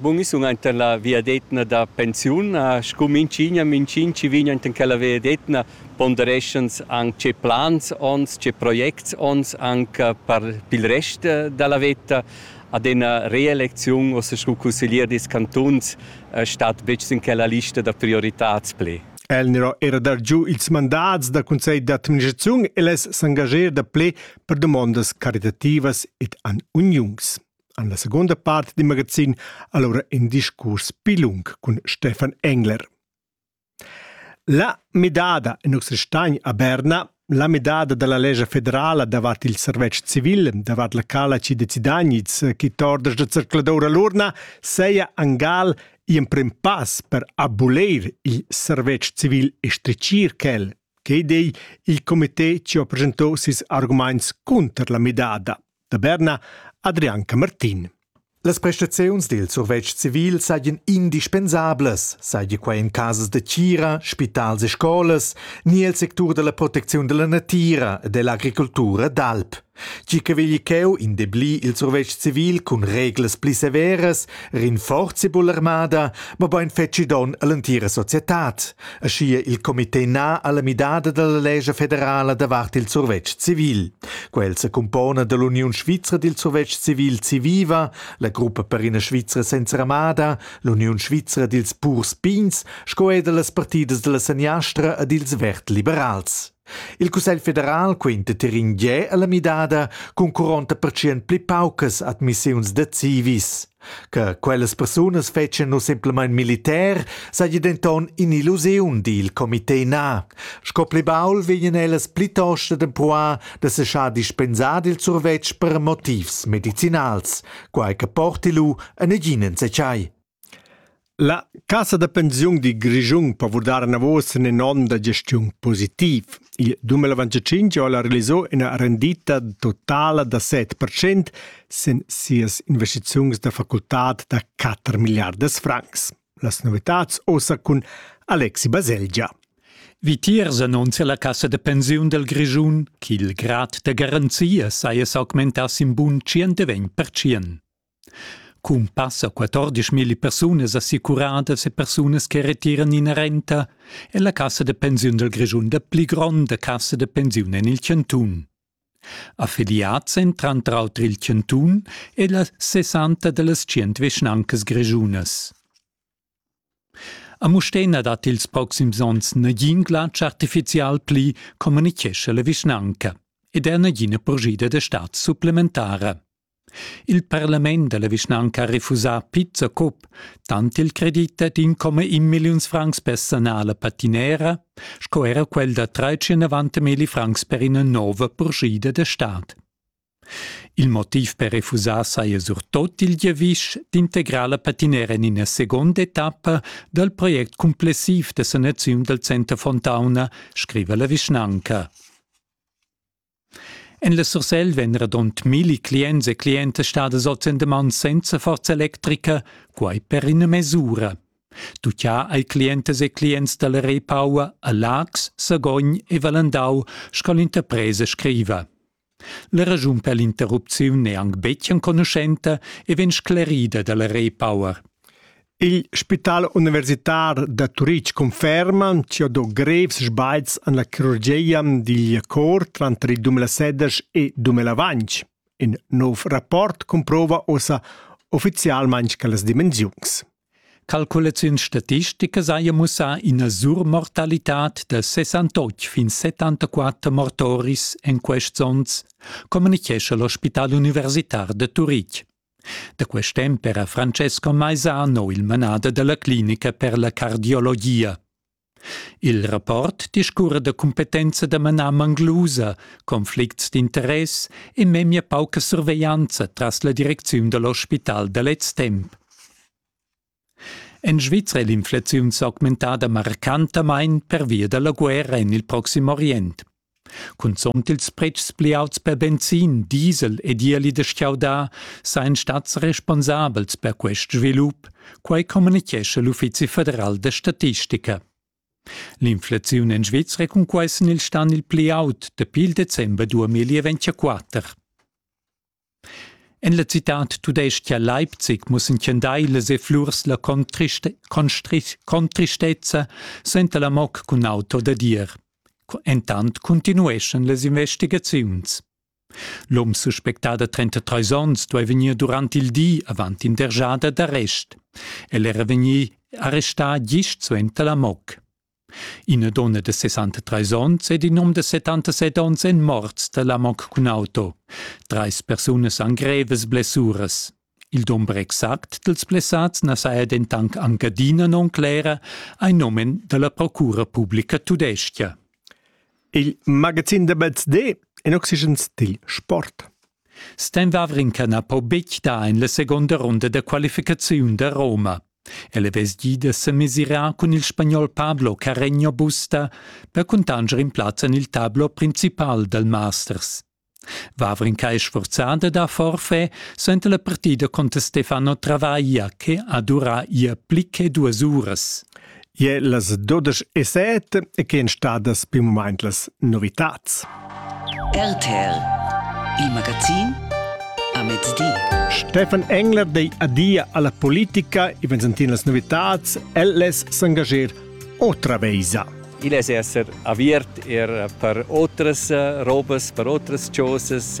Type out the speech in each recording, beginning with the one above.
Bun, io sun aint en la vegliadetgna da pensiun. Scu minchigna, minchin chi vegn aint in quella vegliadetgna pondereschans anc tge plans ons, tge projects ons anc per pil rest da la veta. Ad ena reelecziun uossa scu cusseglier dils cantuns stat betg sin quella lista da prioritads pli. El n'era era dar giu ils mandats da conselj d'administraziun e less s'engager da ple per dumondas caritativas ed an uniuns. En la segunda part del magazin allora in discurs più lung con Stefan Engler. La medada in nostra stagn a Berna, la medada dalla legge federala davat il servetsch civil, davat la calaci de Zidaniz, che tordas da circuladoura l'urna, seia angal in prim pass per abolir il servetsch civil e stricir quel, che dei il comité ci ho presentò sis arguments contro la medada. da Berna, Adrian Camartin. Las prestaziuns dil survetsch civil seigien indispensablas, seigi quei en casas de tgira, spitals e scolas, ni el sectur della protecziun della natira e dell'agricoltura d'alp. Tgi che vegli cheu indeblir il survetsch civil cun reglas pli severas, rinforzi bull'armada, mobein feci don all'entira societad. aschia il comité na alla midada dalla lescha federala davart il survetsch civil. Quel secumpona dall'Uniun svizra dil survetsch civil Civiva, la gruppa per ina Svizra senza ramada, l'Uniun svizra dils purs pigns sco e dallas partidas dalla seniastra ed ils vert liberals. Il Cussegl federal quinta tirin gie alla midada cun quaranta percent pli paucas admissiuns da civis. Che quellas persunas fetschien nus semplamein militär seigi denton in'illusiun dil comité na. Sco pli baul vegnan ellas plitost ad empruar da seschar dispensar il survetsch per motivs medicinals, quai che porti lu a negin enzatgei. La cassa da pensiun dil Grischun po vurdar anavos in onn da gestiun positiv. Il 2025 ha ella realisau ina rendita totala da 7 percent sin sias investiziuns da facultad da 4 milliardas francs. Las novitads ossa cun Alexi Baselgia. Vitiers annunzia la cassa da pensiun del Grischun ch'il grad da garanzia saja s'augmentass in bun 120 percent. Cun passa 14 milli persunas assicuradas e persunas che retiran ina renta è la cassa da pensiun dal Grischun la pli gronda cassa da pensiun en il chantun. Affiliads èn tranter auter il chantun e las 60 da las tschient vischnancas grischunas. A Mustér na dat ils proxims onns nagin glatsch artifizial pli, communichescha la vischnanca, ed er nagina purschida da stad supplementara. Il parlament da la vischnanca ha refusà pizza cup, tant il credit dad 1,1 milliuns francs per sanar la patinera sco era quel da 390 milliuns francs per ina nova purschida da stad. Il motiv per refusar saja surtot il giavisch d'integrar la patinera en ina seconda etappa dal project cumplessiv da sanaziun dal Center Fontauna, scriva la vischnanca. En la Sursel vegn radund milli clients e clientas stadas ozendeman senza forza electrica, quai per ina mesura. Tuccià ai clientas e clients dalla Repaua a Lax, Sagogn e Valendau, sco l'interpresa scriva. La raschun per l'interrupziun è anc betg enconuschenta e vegn sclerida da la Repower. Il spital universitar da Turitg conferma ch'io do grevs sbagls en la chirurgia digl cor tranter 2016 e 2020. In nov rapport comprova ossa uffizialmain quellas dimensiuns. Calculaziuns statisticas haja mussà ina surmortalitad da 68 fin 74 mortoris en quests onns, communitgescha l'ospital universitar da Turitg. Da quest temp era Francesco Maisano il manader della clinica per la cardiologia. Il rapport discurra da cumpetenza da manar manglusa, conflicts d'interess e memia pauca surveglianza tras la direcziun da l'ospital da lez temp. En Svizra è l'inflaziun s'augmentada marcantamain pervia da la guerra en il proxim orient. Cunzunt ils pretschs pli aults per benzin, diesel ed ieli da stgaudar sajan stads responsabels per quest svilup, quai communitgescha l'Uffizi federal da statistica. L'inflaziun en Svizra cunquai sin il stan il pli aut dapi il december 2024. En la citad tudestga Leipzig mussen tschendailas e flurs la contriste- constri- contristezza senta la moc cun auto da dir. Entant continueschan las investigaziuns. L'um suspectà da 33 onns duai vegnir durant il di avant in dergiada d'arrest. El era vegnì arrestà gist suenter la moc. Ina donna de 63 onns ed in um de 77 onns èn morts da l'amok cun auto. Treis persunas han grevas blessuras. Il dumber exact dels blessats na saja dentanc anc adina non clera ai nomen della Procura Publica Tudestia. Il magazin de BZD en oxygens dil sport. Stan Wawrinka na po betg dar en la seconda ronda da qualificaziun da Roma. El è vestgì da semesirar cun il spagnol Pablo Carreño Busta per cuntanscher in plaz en il tablo principal dal Masters. Vavrin Kai sforzà da dar forfait suenter la partida contr Stefano Travaglia che ha durà ia pli che duas uras. Je las dodesch e set che èn stadas per mumaint las novitads. RTL, il magazin a mezdi. Stefan Engler dei adia alla politica e vensentin las novitads, el les s'engager otra veisa. Il es esser aviert er per otras robas, per otras chosas,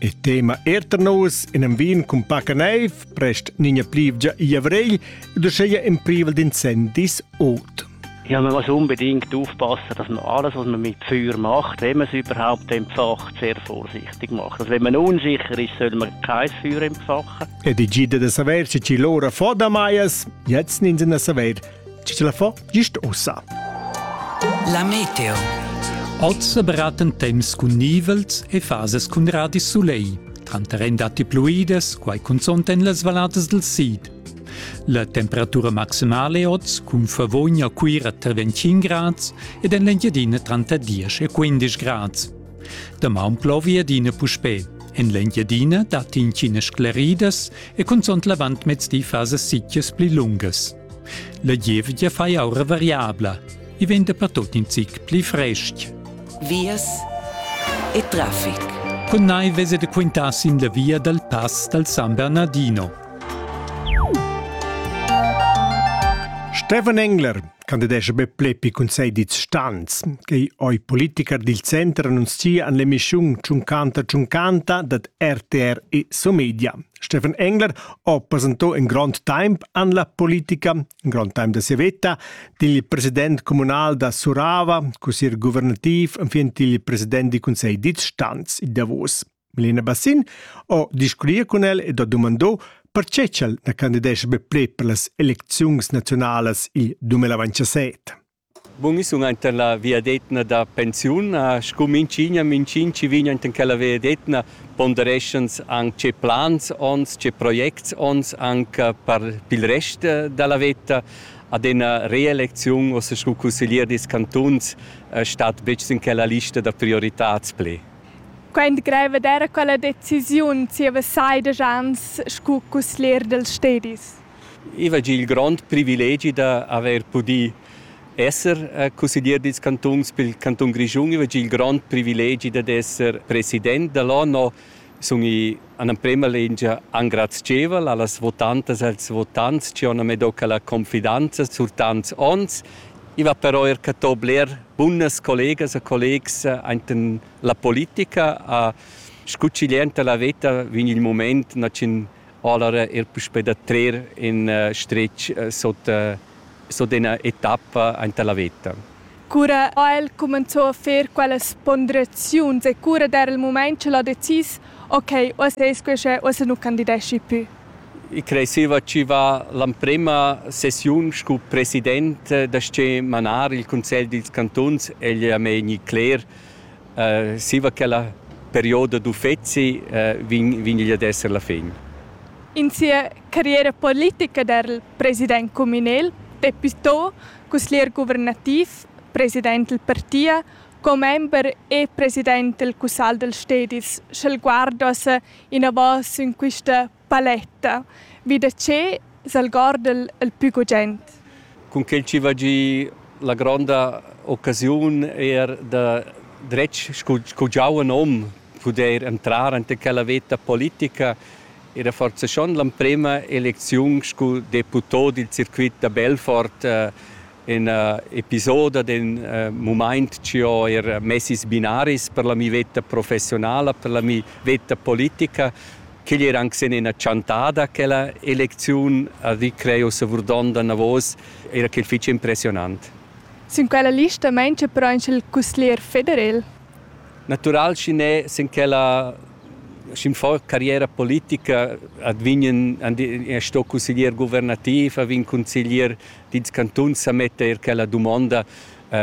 Il tema er tar nus in am vin cun paca neiv, prest nina plivgia i avrigl, da scheia in privel d'incendis ot. Ja, man muss unbedingt aufpassen, dass man alles, was man mit Feuer macht, wenn man es überhaupt entfacht, sehr vorsichtig macht. Also wenn man unsicher ist, soll man kein Feuer entfachen. E die Gide de Saver, ci lora fo da maias, jetzt nin se na Saver, Ti la fo gist ussa. La meteo. Oz beraten temps cun nivels e fases cun radis soleil. Tranter en datti pluides, quai consont en las valadas del sid. La temperatura maximale oz cun Favogna Cuira tra 25 grads ed en l'Engiadina tranter 10 e 15 grads. Damaun plovi adina puspè. En l'Engiadina datti intginas scleridas e consont l'avant mezdi fasas sitias pli lungas. La gievgia fai aura variabla. I vegn dapertut in zic pli frestg. Vias e traffic. Con nai vese de quintar sin la via dal pass dal San Bernardino. Stefan Engler candidesce be plepi cun sei dits stans, che oi politiker dil center annunzia an l'emissiun Ciuncanta Ciuncanta dat RTR e Somedia. Steffen Engler ha presentà in grond temp en la politica, in grond temp da sia veta, digl president communal da Surava, cussier guvernativ enfin il president del Conselh d'Itstanz il Davos. Milena Bassin ha discutir con el ed ha dumandò perché ch'el na candidesce be pli per las elecziuns nazionalas il 2027. Bun, i sun aint en la viadetna da pensiun. Scu minchigna, minchin chi vegn aint in quella viadetna pondereschans anc tge plans ons, tge projects ons anc per pil rest da la veta. Ad ena reelecziun ussa scu cusseglier dils cantuns stat betg sin quella lista da prioritads pli. Quaint greiv d'eira quella decisiun zieva sei desch ans scu cusseglier dels stedis. I va gia il grond privilegi da haver pudì esser cusseglier dils cantuns pil cantun Grischun. I va gia il grond privilegi dad esser president dall'ONU sun i an emprema lingia engrazievel allas votantas e als votants che han medocca la confidanza sur tants onns. I va però er catò bler bunas collegas e collegs enten la politica. A scucciglienta la veta vegn il moment nachin Allora er puspè da trer in stretg sot, sot ina etappa anta la veta. Cura ha el cumenzà a fer quellas ponderaziuns e cura d'era il mument ch'el ha decis ok, o ses quescha o se nu candideschi pü? I creseva chi va l'emprema sessiun scu president da sche manar il cunsegl dils cantuns egl a me gni cler Zieva quella perioda d'uffezi vegn vegn igl ad esser la fin. In sia carriera politica da'l president cumünel Peppi To, cusglier guvernativ, president dal partia, commember e president dal cussagl dals stedis sch'el guardasse inavò sün quista Paletta, vi da che s'algorda'l il pü gugent? Cun quel chi va giü la gronda occasiun eir da dretg scu scu giuven hom pudair entrar anta quella veta politica era forsa schon l'emprema elecziun scu deputò dil circuit da Belfort in episoda d'in mumaint chi ho eir mess ils binaris per la mi veta professionala, per la mi veta politica, ch'igl era anc sen ina chantada quella elecziun a vi creo savurdonda navos, era ch'el fitg impressionant. Sin quella lista mancia però anc il cusglier federel. Natural schi ne sin quella schi'm fo carriera politica advignen sto cusglier guvernativ, a vin consiglier dils cantuns sa metter quella dumonda,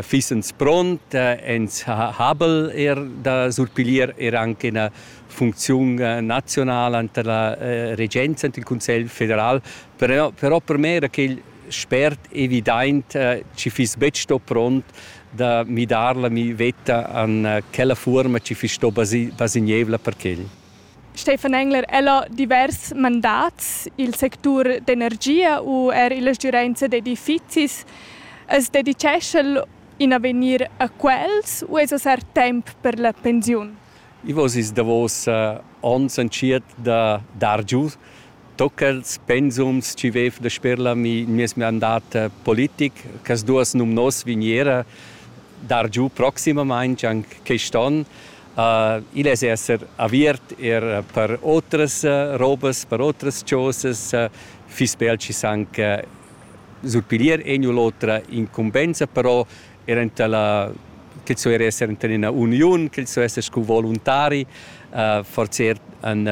Fissens pront, ins ha habel er da surpiglier er anche ina funcziun nazionala enter la regenza ent il Cunsegl federal, però, però per me era quel spert evidaint chi fiss betg sto pront da midar la mi vetta an quella fuorma chi fiss sto basignievla per quel. Stefan Engler, el ha divers mandats i'l sectur d'energia u eir illa stgürainza d'edifizis. As dedichescha'l in avegnir a quels u esa sar temp per la pensiun? I voss ils davos ons entschiet da dar giù tochels pensums chi vaiv dasper la meis mandat politic ch'as duos numnos vgniera dar giù proximamaing anc quist on. Igl es esser aviert eir per otras robas, per otras chosas, fiss be el chi s'anc surpiglier egn u l'otra incumbenza, però eir enta la quel so eir esser enta üna uniun, quel so esser scu voluntari, forsa eir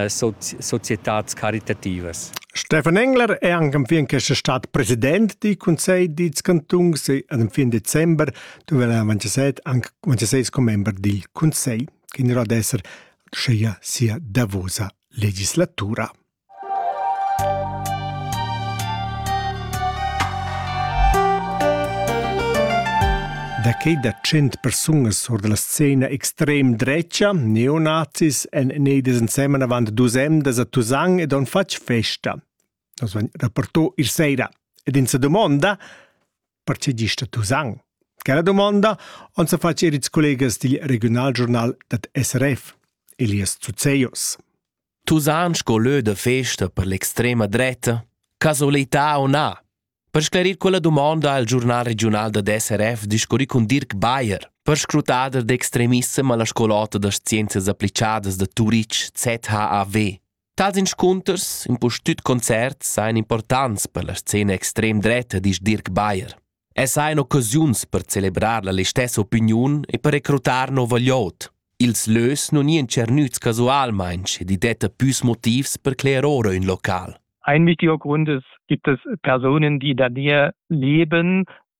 societats caritativas. Stefan Engler è anche fin questa stad president dal Consiglio dei cantuns e fin december duvrà Manchester anche Manchester come membro del Consiglio, che in ad essere scia sia davosa legislatura. Da che da cent persunas sur della scena extrem drecia, neonazis, en neides insemmen avant dus emdas a Tusan ed on fatg festa. Nos vegn rapportò ir sera. Ed in sa domanda, perche gista Tusan? Quella domanda on sa fatg er ils collegas dil regionalgiornal dat SRF, Elias Zuzeos. Tusan sco lö da festa per l'extrema dretta? Casualità o na? Per sclarir quella domanda ha il giornal regional da SRF discurri cun Dirk Bayer, perscrutader d'extremissem alla scolata das scienzias applicadas da Turitg, ZHAW. Tals inscunters, impustüt concerts, sajan importants per la scena extrem dretta, disch Dirk Bayer. E sajan occasiuns per celebrar la listessa opiniun e per recrutar nova gliout. Ils lös non ian tschernüts casualmaing ed i detta püs motivs per cler ora ün local. Ein wichtiger Grund ist, gibt es Personen, die da dir leben,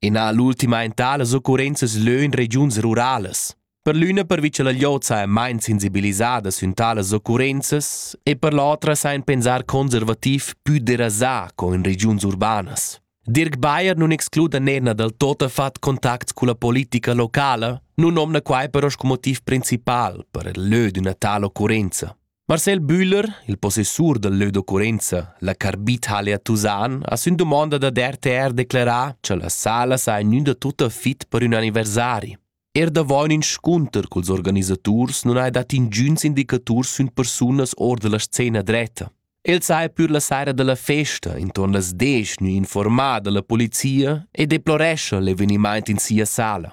Ina ha l'ultima entà las occurrenzas leu in regiuns ruralas. Per l'üna pervi che la glieud saja mein sensibilisada sün talas occurrenzas e per l'otra sajan pensar conservativ pü derasà co in regiuns urbanas. Dirk Bayer nun excluda Nenna dal totafat contacts culla politica locala, nun nomna quai però sco motiv principal per il lö d'üna tal occurrenza. Marcel Bühler, il possessur dal lö d'occurrenza La Carbithalle a Tusan, ha sün dumonda dad RTR declerà cha la sala saja gnüda tutta fit per ün anniversari. Er davo ün inscunter culs organisaturs nun hai dat ingüns indicaturs sün persunas or da la scena dretta. El saja pür la saira da la festa intorn las 10 gnü informada la polizia e deplorescha l'evenimaint in sia sala.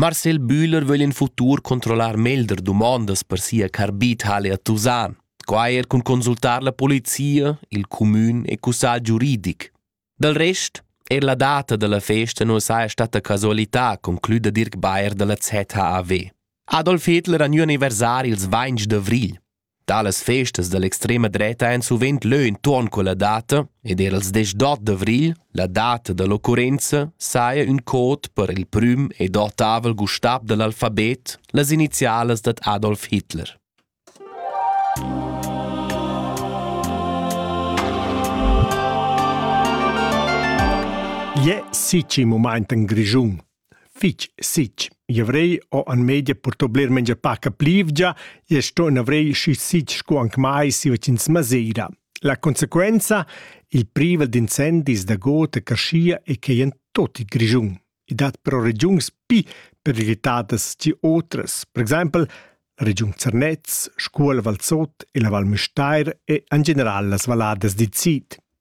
Marcel Bühler vögl in futur controllar meglder dumondas per sia carbitale a Tusan, quai er cun consultar la polizia, il cumün e cussagl giuridic. Dal rest, er la data da la festa nu saja stata casualità, conclüda Dirk Bayer da la ZHAW. Adolf Hitler ha gnü anniversari ils 20 d'avrigl. Talas festas dall'extrema dreta ein suvent leu entuorn culla data ed era ils desch d'ot d'avrigl, la data dall'occurrenza, saja ün cod per il prüm ed ottavel gustab dall'alfabet, las inizialas dad Adolf Hitler. Ie sici mumaint in Grischun. Fich sitg. I avrei ho en media purtò bler meglier paca plivgia e sto in avrei schi sitg sco anc mai si vecin Masera. La consequenza, il privel d'incendis da god e carschia e quei en tot il Grischun. I dat però regiuns pi periclitadas che otras, per exempel la regiun Zernez, Scuol Valsot e la Val Müstair e en general las valladas dil sid.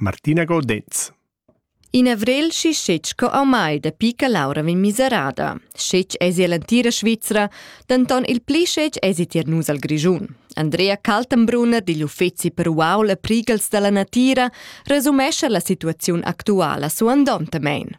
Martina Godez. In avrel schi schetg co ormai dapi che Laura vegn miserada. Schetg esi ell'entira Svizra, denton il pli schetg esi tier nus al Grischun. Andrea Kaltenbrunner digl uffeci per uaul e prigels dalla natira resumescha la situaziun actuala suandontamein.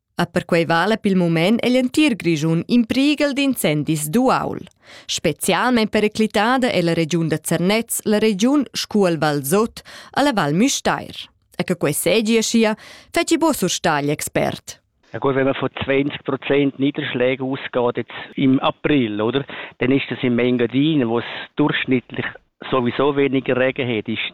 A perquei vala pil mument egl entir Grischun in prighel d'incendis d'uaul. Specialmein periclitada è la regiun da Zernez, la regiun Scuol Val Sot, alla Val Müstair. E che quei segi aschia, feci bo surstagl expert. Ja gut, wenn man von 20 Prozent Niederschläge ausgeht jetzt im April, oder, dann ist das in Mengadin, wo es durchschnittlich sowieso weniger Regen hat, ist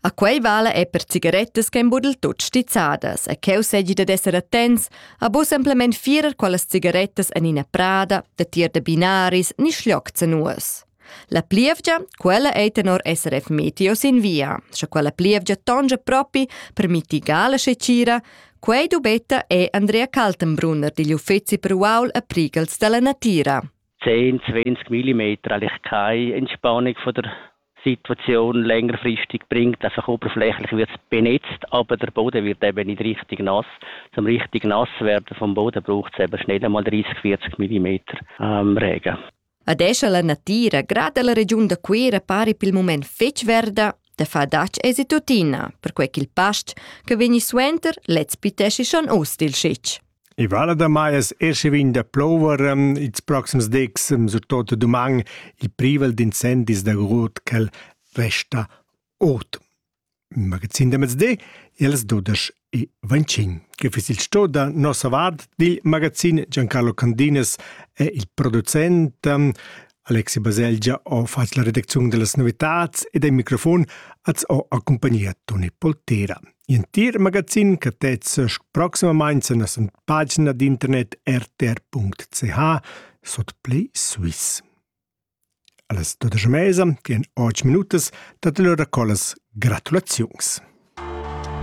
A quei vala è per cigarettas che embudel tut stizzadas e cheu segi dad esser attents a bu simplement firer quellas cigarettas en ina prada, da tier da binaris ni schlioc zanuas. La plievgia, quella ei tenor SRF Meteo sin via, sche quella plievgia tongia propi per mitigar la scecira, quei dubetta è Andrea Kaltenbrunner digl uffeci per uaul e prigels dalla natira. 10-20 mm Lichkai Entspannung von der Situation längerfristig bringt, dass auch oberflächlich wird benetzt, aber der Boden wird eben nicht richtig nass. Zum richtig nass werden vom Boden braucht es eben schnell einmal 30, 40 mm ähm, Regen. Adesso la natira, grada la regiun da Cuira pari per il moment fetg verda, da fadac esi tuttina, perquei ch'il past che vegni suenter lez pitesci schon ost il scitg. I vala damai as escha vegn da plouver ehm, ils proxims decs, ehm, surtot duman, il privel d'incendis da grot ch'el resta ot. Il magazin da mezdi, els dudesch e ventschin, che fis il sto da nossa vart dil magazin Giancarlo Candinas e il producent ehm, Alexi Baselgia ha fatg la redacziun dellas novitads ed il microfon az ho accumpagnia Toni Poltera. Entir magazin che tezza proximamain la nossa pagina d'internet rtr.ch sot Play Swiss. Alles dodesche Mesa, che in 8 minutas, dat loro collas gratulaziuns.